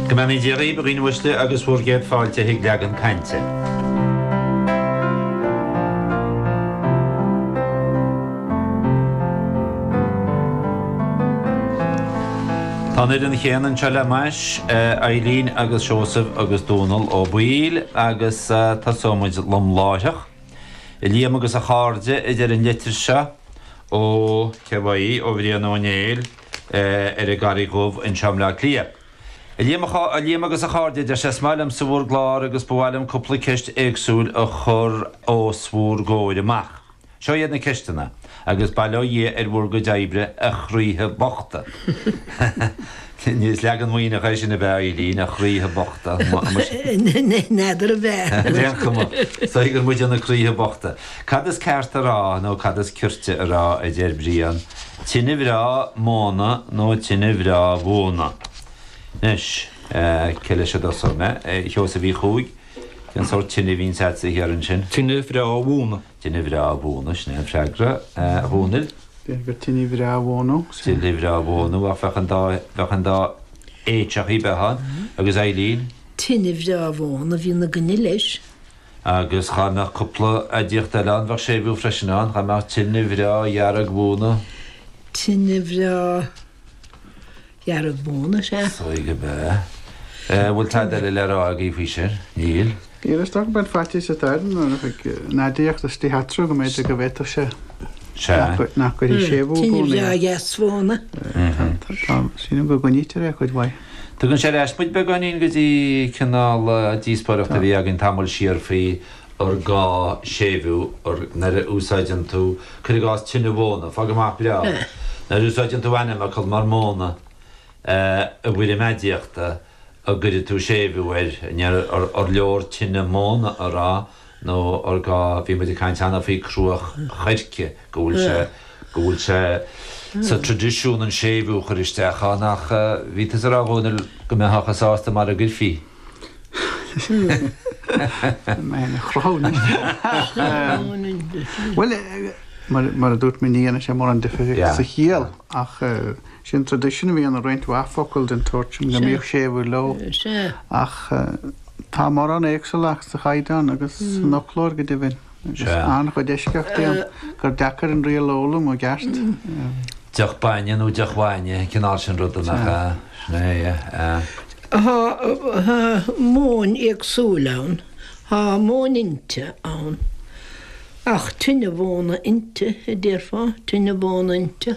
Go mbeannaí Dia dhaoib, a dhaoine uaisle, agus bhur gcéad fáilte chuig Leagan Cainte. Tá an fhoireann chéanna anseo le m'ais, Eilín agus Seosamh agus Dónall Ó Baoill, agus tosóimid lom láithreach. I Liam agus a chairde, a deir an litir seo ó, cé uaidh í, ó Brian Ó Néill. ar an gCarraig Dhubh anseo i mBleá Cliath. A Liam, a Liam agus a chairde, deir sé, is maith liomsa bhur gclár agus ba mhaith liom cúpla ceist éagsúil a chur os bhúr gcomhair amach. Seo iad na ceisteanna, agus bail ó Dhia ar bhur gcuid oibre, a chroíthe bochta. Is leagan maoithneach é sin ab ea, a Eilín? A chroíthe bochta? N'fheadar a bheith. Ar aon cuma, tuigeann muid na croíthe bochta. Cad is ceart a rá, nó cad is cirte a rá, a deir Brian. Tine bhreá móna nó tine bhreá mhóna? Anois, cé leis a dtosóidh mé? A Sheosaimh Uí Chuaig? Cén sórt tine a bhíonns a'd in Árainn? Tine bhreá mhóna. Tine bhreá mhóna, sin é an freagra, a Dhónaill. B'fhéidir gur tine bhreá mhóna. Tine bhreá mhóna, ach bheadh an dá, bheadh an dá H bheadh ann. Agus Eilín? Tine bhreá mhóna, bhí na gcne leis. Agus dhá mbeadh cúpla aidiacht eile ann, bheadh séimhiú freisin ann, dhá mbeadh tine bhreá dhearg mhóna. Tine bhreá dhearg mhóna, sea. Suigh ab ea. An bhfuil tada eile le rá agaibh faoi sin? Níl. Níl, is dócha go mbeadh faitíos atá ar an aidiacht is í a athrú go mb'fhéidir go bhféadfadh sé Sea. nach gcuirfidh séimhiú buan air. Tine bhreá dheas mhóna. Tá, sílim go gcoinnítear é a cuid mhaith. Tugann sé ar ais muid beagáinín go dtí cineál díospóireachta a bhí againn tamall siar faoi ar ghá séimhiú ar nuair a úsáideann tú, cuir i gcás, tine mhóna, fág amach breá, nuair a úsáideann tú ainmfhocal mar móna i bhfoirm aidiachta, an gcuirfidh tú séimhiú air, an leor tine móna a rá? nó ar ndóigh bhí muid ag caint cheana faoi cruach choirce, go bhfuil sé, go bhfuil sé sa tradisiún an séimhiú a chur isteach ann ach bhí tusa ag rá a Dhónaill go mbeifeá sásta mara gcuirfí. Mé chruthú Bhuel mar a dúirt mé ní dhéanann sé mórán difir sa chiall ach Sin tradition a bhí ann i roinnt mhaith focal den tsórt sin, go mbíodh séimhiú leo. Ach tá mórán éagsúlacht sa chaighdeán agus san fhoclóir go deimhin. Agus an-chuid eisceachtaí ann gur deacair an riail a fhoghlaim i gceart. Deoch bainne nó deoch bhainne, an cineál sin ruda, nach ea? Sin é, yeah. Tá móin éagsúil ann. Tá móin inti ann. Ach tine mhóna inti a déarfá, tine mhóna inti.